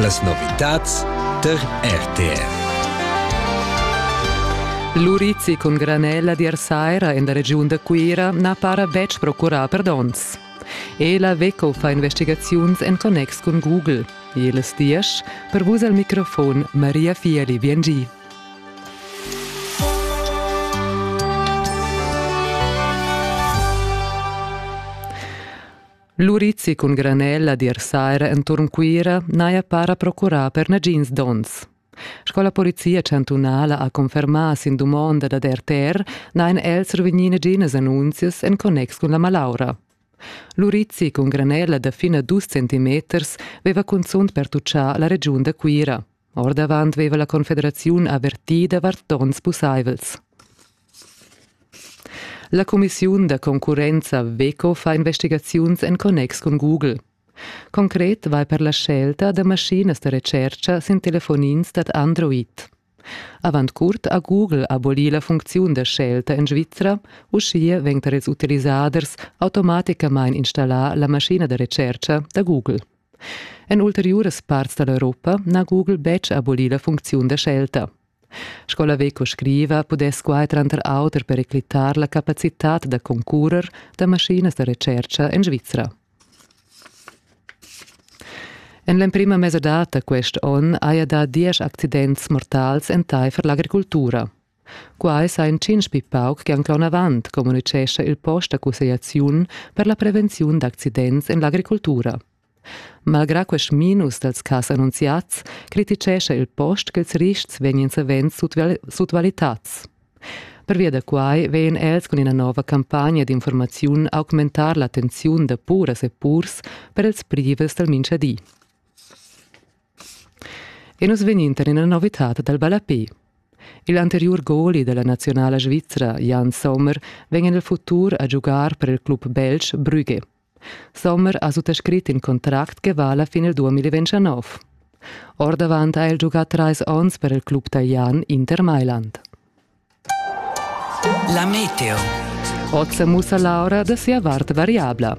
Las novitads tar RTR. L'urizi cun granella d'ir saira en la regiun da Cuira na para betg procurà per donns. Ela Veco fa investigaziuns en connex cun Google. Ils diesch per vus al microfon Maria Fieli Biengi. L'urizi cun granella dir saira enturn Cuira n'haja para procurà per nagins donns. Sco la polizia chantunala ha confermà sin dumonda dad RTR n'hain els survegnì naginas annunzias en connex cun la malaura. L'urizi cun granella da fin a dus centimeters veva cunzunt pertuchà la regiun da Cuira. Ordavant veva la confederaziun avertì davart donns pussaivels. La cumissiun da concurrenza WECO fa investigaziuns en connex cun Google. Concret vai per la scelta da maschinas da retscherca sin telefonins dad Android. Avant curt ha Google abolì la funcziun da scelta en Svizra, uschia vegn tar ils utilisaders automaticamain installà la maschina da retscherca da Google. En ulteriuras parts dall'Europa n'ha Google betg abolì la funcziun da scelta. Sco la Veco scriva, pudess quai tranter auter periclitar la capacitad da concurrer da maschinas da retscherca en Svizra. En l'emprima mesadata quest onn haja dà diesch accidents mortals entaifer l'agricultura. Quai sa intschintg pli pauc che anc l'onavant, communitgescha il post da cussegliaziun per la prevenziun d'accidents en l'agricultura. Malgrà quest minus dals cas annunziads criticescha il post ch'ils rists vegnan savens sutvalitads. Pervia da quai vegn els cun ina nova campagna d'informaziun a augmentar l'attenziun da puras e purs per els privels dal minchadi. E nus vegnintan ina novitad dal ballape. Il anteriur goli della nazionala svizra Jan Sommer vegn en il futur a giugar per il club belg Brügge. Sommer ha suttascrit in contract che vala fin il 2029. Ordavant ha el giugà trais onns per il club talian Inter Mailand. La meteo. Oz sa mussa l'aura da sia vart variabla.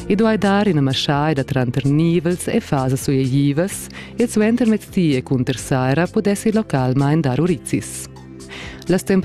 I duai dar ina maschaida tranter nivels e fasas suegivas e suenter mezdi e cunter saira pudessi localmain dar urizis. Las temperaturas